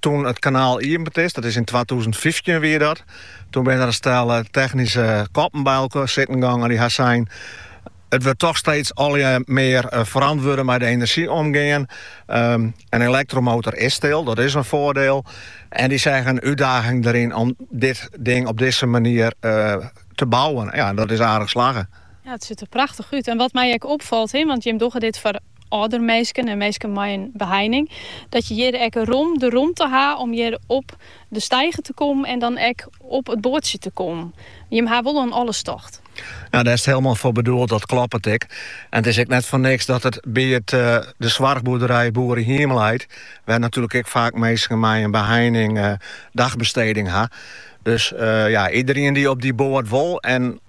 Toen it kanaal iepend is, dat is yn twatûzen fyftjin wie dat, toen binne der in stel technyske koppen by elkoar sitten gong en dy ha sein, it wurdt toch steeds allegear mear ferantwurde mei de enerzjy omgean. In elektromotor is stil, dat is in foardeel. En dy seagen útdaging deryn om dit ding op dizze manier te bouwen. Ja, dat is aardich slagge. Ja, it sit der prachtich út. En wat my ek opfalt, want jim dogge dit foar âlder minsken en minsken mei in beheining, dat je hjir ek rom de romte ha om hjir op de steiger te kommen en dan ek op it boatsje te kommen. Jimme ha wol oan alles tocht. Nou, dêr is 't hielendal foar bedoeld, dat kloppet ek. En it is ek net foar niks dat it by it, eh, de soarchboerderij Boerehiem leit, wêr't natuerlik ek faak minsken mei in beheining, eh, dagbesteding ha. Dus, eh, ja, iederien dy't op dy boat wol en,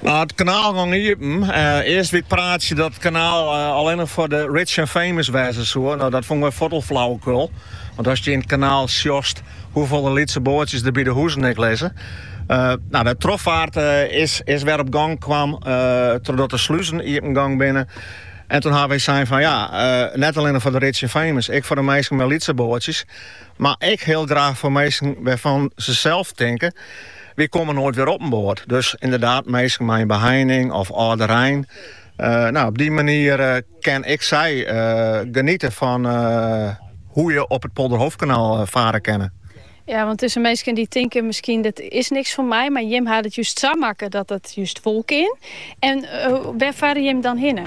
Nei it kanaal gong iepen. Earst wie it praatsje dat it kanaal allinnich foar de rich en famous wêze soe. No, dat fûnen we fuort al flauwekul. Want ast hjir yn it kanaal sjochst hoefolle lytse boatsjes der by de huzen ek lizze. No, de trochfaart is wer op gong kwam trochdat de sluzen iepen gong binne. En toen hawwe we sein fan ja, net allinnich foar de rich en famous, ek foar de minsken mei lytse boatsjes. Mar ek hiel graach foar minsken wêrfan't se sels tinke, Wy komme noait wer op in boat. Dus ynderdaad minsken mei in beheining of âlderein. No, op dy manier kinne ek sy geniete fan hoe je op it Polderhoofdkanaal fare kinne. Ja, want dus minsken dy tinke miskien dit is niks foar my, mar jim ha it just sa makke dat it just wol kin. En wêr fare jim dan hinne?